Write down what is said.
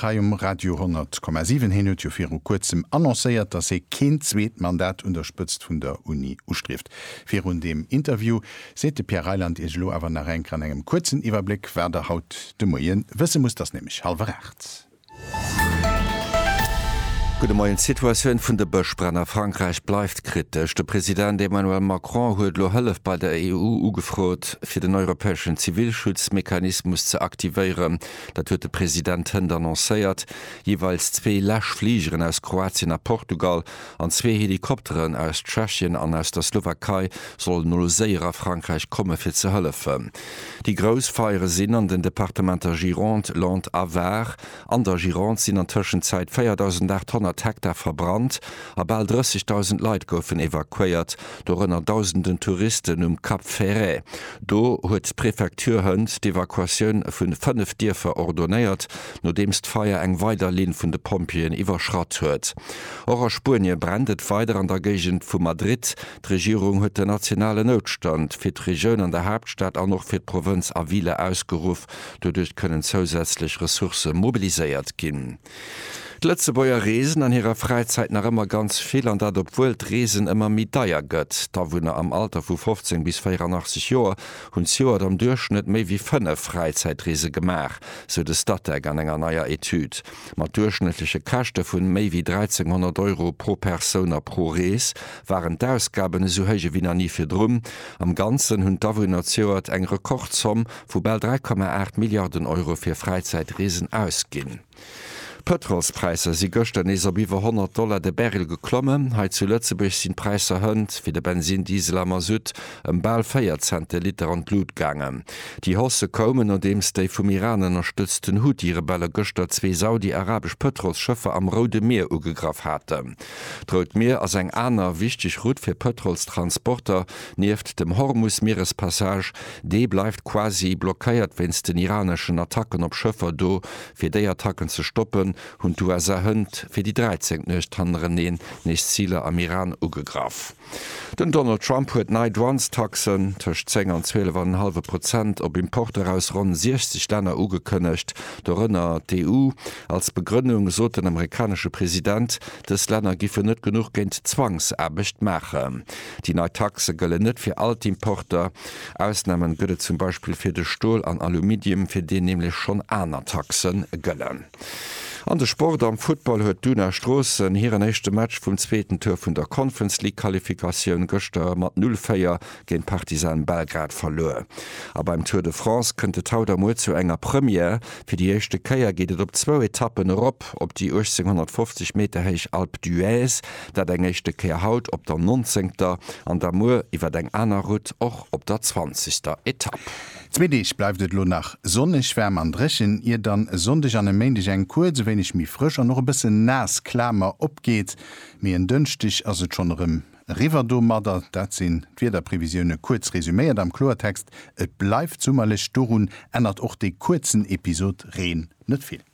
Hei um Radio 100,7. Heen huet jo viru kuerzem annoncéiert, datt hee keen zweet Mandat un der Spëtzt vun der Uni ustrieft. Virun deem Interview seet de Pierre Reyland Iech elo awer nach enk an engem kuerzen Iwwerbléck, wat Der haut de Moie wësse musst. T'ass nämlech hallwer 8. Gudde Moien. D'Situatioun vun de Bëschbränn a Frankräich bleift kritesch. De President Emmanuel Macron huet elo Hëllef bei der EU ugefrot, fir den europäeschen Zivilschutzmechanismus ze aktivéieren. Dat huet de President hënt annoncéiert. Jeeweils zwee Läsch Fligeren aus Kroatien a Portugal an zwee Helikopteren aus Tschechien an aus der Slowakei sollen elo séier a Frankräich komme fir ze hëllefen. Déi grouss Feiere sinn an den Departementer Gironde, Landes a Var. An der Gironde sinn an Tëschenzäit 4.800 Hektar verbrannt a bal 30.000 Leit goufen evakuéiert, dorënner dausenden Touristen um Cap Ferret. Do huet d'Prefecture hënt d'Evakuatioun vun 5 Dierfer ordonéiert, nodeems d'Feier eng weider Linn vun de Pompjeeën iwwerschratt huet. Och a Spuenie brennt et weider an der Géigend vu Madrid. D'Regierung huet den nationalen Noutstand fir d'Regioun an der Haaptstad an och fir d'Provënz a Ville ausgeruff. Doduerch kënnen zousätzlech Ressourcë mobiliséiert ginn. D'Lëtzebuerger reesen an hirer Fräizäit nach ëmmer ganz vill an dat obwuel d'Reesen ëmmer méi deier gëtt. D'Awunner am Alter vu 15 bis 84 Joer hunn zejoert am Duerchschnëtt méi wéi 5 Fräizäitreese gemaach, sou de Statec an enger neier Etüd. Mat duerchschnëttleche Käschte vun méi wéi 1.300 Euro pro Persoun a pro Rees waren d'Ausgaben esou héich ewéi nach ni virdrun. Am Ganzen hunn d'Awunner zejoert eng Rekordzomm vu bal 3,8 Milliarden Euro fir Fräizäitreesen ausginn. D'Pëtrolspräisser si gëschter nees op iwwer 100 Dollar de Barrel geklommen. Hei zu Lëtzebuerg sinn d'Präisser hënt fir de Bensinn, Diesel a Masutt ëm bal 4 Cent de Liter an d'Lut gaangen. Déi Hausse koumen, nodeems déi vum Iran ënnerstëtzten Huthi-Rebelle gëschter zwee saudi-arabesch Pëtrolsschëffer am Roude Mier ugegraff haten. D'Rout Mier ass eng aner wichteg Route fir Pëtrolstransporter. Nieft dem Hormus-Mierespassage Dee bleift quasi blockéiert wéinst den iraneschen Attacken op Schëffer do. Fir déi Attacken ze stoppen, hunn d'USA hënt fir déi dräizéngt Nuecht hannereneen nees Ziler am Iran ugegraff. Den Donald Trump huet nei Douanestaxen, tëscht 10 an 12 an en hallwe Prozent, op Importer aus ronn 60 Länner ugekënnegt, dorënner d'EU. Als Begrënnung sot den amerikanesche President, dës Länner giffen net genuch géint d'Zwangsaarbecht maachen. Déi nei Taxe gëllen net fir all d'Importer. Ausnamen gëtt et zum Beispill fir de Stol an Aluminium, fir deen nämlech schonn aner Taxe gëllen. An de Sport, Am Futtball huet d'Una Stroossen hiren éischte Match vum zweeten Tour vun der Conference League Qualifikatioun gëschter mat 0, 4 géint Partizan Belgrad verluer. A beim Tour de France kënnt et haut a muer zu enger Première, Fir déi éischte Kéier geet et op zwou Etappen erop op déi 1850 Meter héich Alpe d'Huez. Dat eng éischte Kéier haut op der nonzéngter an da muer iwwert eng aner Route och op der zwanzegster Etapp. Zwee Deeg bleift et elo nach sonneg, waarm an dréchen, ier dann e Sonndeg an e Méindeg eng kuerz e wéineg méi frësch an och e bëssen naass Klamer opgeet, mee en Dënschdeg ass et schonn erëm eriwwer domadder. Dat sinn d'Wiederprevisioune kuerz resuméiert am Kloertext, Et bleift summerlech, dorun ännert och dee kuerzen Episod Reen net vill.